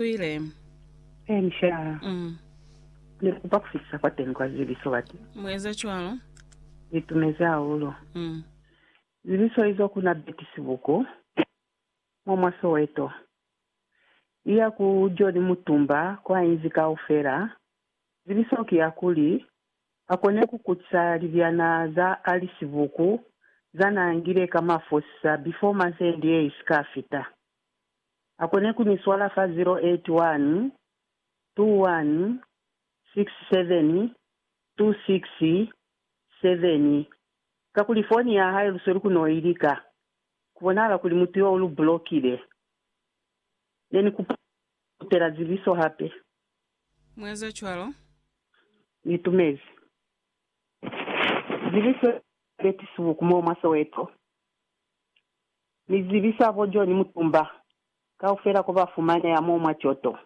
Swile. Inca. Mm. Ni kupa kufisa kwa teng kwa zibiso bati. Mueza cwalo. Ni tumezi hahulu. Mm. Zibiso izo ku na Betty Sibuku, mwa mwa Soweto. Iya ku John Mutumba kwa inzi kaufela, zibiso ki ya kuli, a kone ku kutisa libyana za Ali Sibuku za na ngile ka mafosisa before month end ye isi ka fita. akone ku ni swala fa 0812167267 kakuli foni ya hae lusweli ku no i lika, ku bonahala kuli mutu yo u lu bulokile. Ne ni kupa ku kutela zibiso hape. Mu eza cwalo. Ni tumezi zibiso ya Betty Subuku mo mwa Soweto. Ni zibisa bo John Mutumba kaufela ko ba fumaneha mo mwa Kyoto,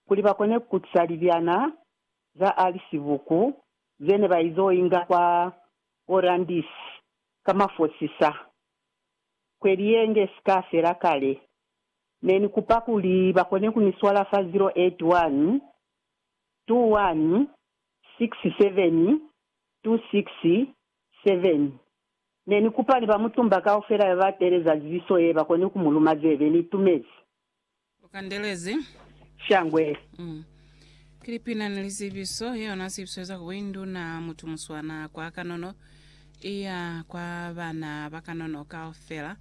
kuli ba kone ku kutisa libyana za Alice Buku ze ne ba izo inga kwa Olandis ka mafosisa kweli ye nge si ka fela kale. Ne ni kupa kuli ba kone ku ni swala fa 0812167267. Ne ni kupa ni ba mutumba kaufela ba ba teeleza zibiso ye ba koni ku mu luma zebe. Ni itumezi. U kandelezi. Shangwe. Mm. Ki lipina ni lizibiso, yona zibiso ye za ku buinduna, mutu muswana kwa kanono, iya kwa bana ba kanono kaufela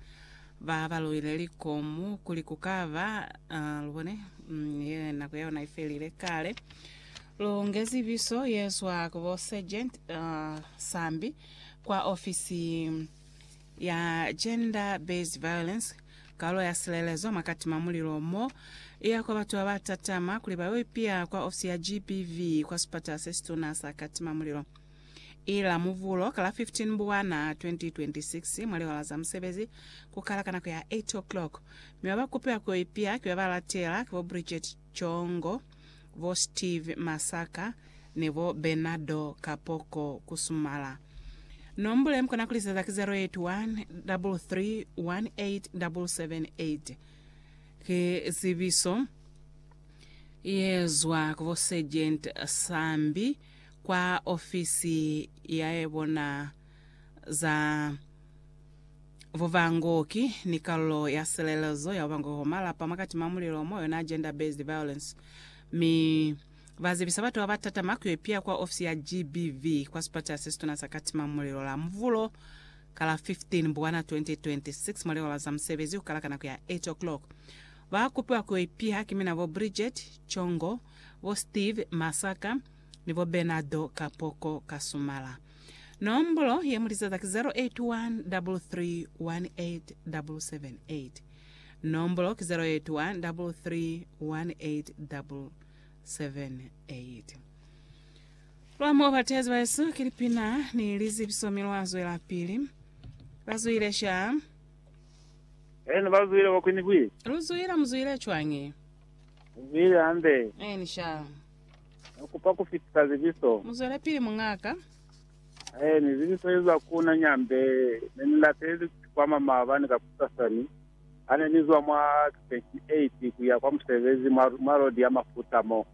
ba ba luile likomu, kuli ku ka ba, uh, lubone, mm, ye nako ya yona ifelile kale. Lu nge zibiso ye zwa ku bo Sergeant, uh, Sambi. Kwa ofisi ya Gender Based Violence, kalo ya silelezo mwa Katima Mulilo mo iya kwa batu baba tatama kuli bayo ipiya kwa ofisi ya GBV kwa sipatala sesituna sa Katima Mulilo. Ila Muvulo ka la 15 Mbwana 2026 mwa liwala za musebezi kukala ka nako ya 8:00 mi baba kupiwa kuyo ipiya ki baba latela ki bo Bridget Congo, bo Steve Masaka ni bo Bernardo Kapoko Kusumala. Nombule mukona kuliseza ki 0813387778. Ki zibiso ye zwa ku bo Sergeant Sambi kwa ofisi ya bona za Bubangoki ni kalulo ya silelezo ya bubangoki bwa malapa mwakati mwa mulilo mo yona Gender Based Violence mi ba zibisa batu baba tatama ku yo piya kwa ofisi ya GBV kwa sipatela se situna sa kati mwa mulilo la Muvulo ka la 15 Mbwana 2026 mwa lihola za musebezi ku kala ka nako ya 8 o'clock. Ba kupiwa ku yo ipiha ki mina bo Bridget Chongo, bo Steve Masaka ni bo Bernardo Kapoko Kasumala. Nombolo ye mulizaza ki 081 3318778. Nombolo ki 081 3318778. Lwa mo batezi ba Yesu ki lipina ni lizipiso mi lwa zwelapili. Ba zwile sha. Eni ba zwile kwa kwini bwi. Lu zwile mu zwile cwañi? Mu zwile hande. Eni sha. Ne kupa ku fitisa zibiso. Muzwelapili muñaaka. Hae ni zibiso ezwa ku na Nyambe. Ne ni lateli ku sikwama maabani kakusasani hane ni zwa mwa 28 kuya kwa musebezi mwa, mwa lodi ya mafuta mo.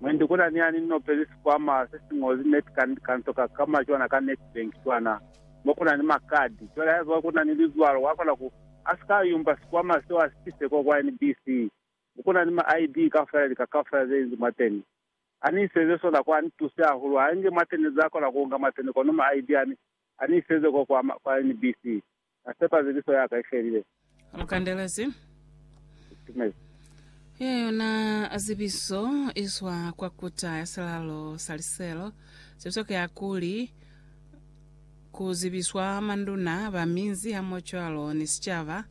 Mwendi kuna ni ani ni nopezi sikwama se si ñozi net ka, ka nto ka kama cwana ka Nedbank cwana, mo kuna ni makadi. Cwale haiba kuna ni lizwalo, wakona ku, asika ayumba sikwama seo asitise ko kwa NBC. Kuna ni ma ID kaufela lika kaufela zeinzi mwateni. Ani iseze sona kwa ni tuse hahulu ha nge mwateni za kona kuunga mwateni kono ma ID ani ani iseze ko kwa ma kwa NBC. Na sepa ziliso yaka ifelile. Mukandelezi. Itumezi. Ya yona zibiso izwa kwa kuta ya silalo sa liselo. Zibiso ke hakuli ku zibiswa manduna ba minzi hamoho cwalo ni sicaba.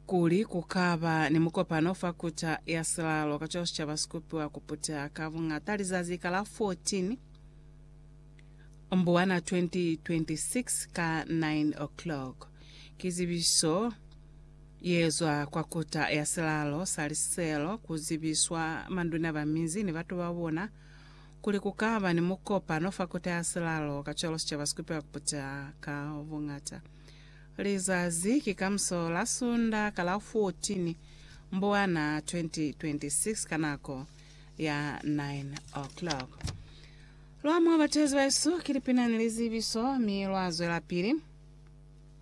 kuli ku ka ba ni mukopano fa Kuta ya Silalo kacwalo sicaba si kupiwa ku puteha ka buñata lizazi ka la 14 Mbuwana 2026 ka 9:00. Ki zibiso ye zwa kwa Kuta ya Silalo sa Liselo ku zibiswa manduna ba minzi ni batu ba bona kuli ku ka ba ni mukopano fa Kuta ya Silalo kacwalo sicaba si kupiwa ku puteha ka buñata. Lizazi ki kamuso la Sunda ka la 14 Mbwana 2026 ka nako ya 9:00. Lwa mwa batezi bahesu ki lipina ni lizibiso mi lwa zwelapili.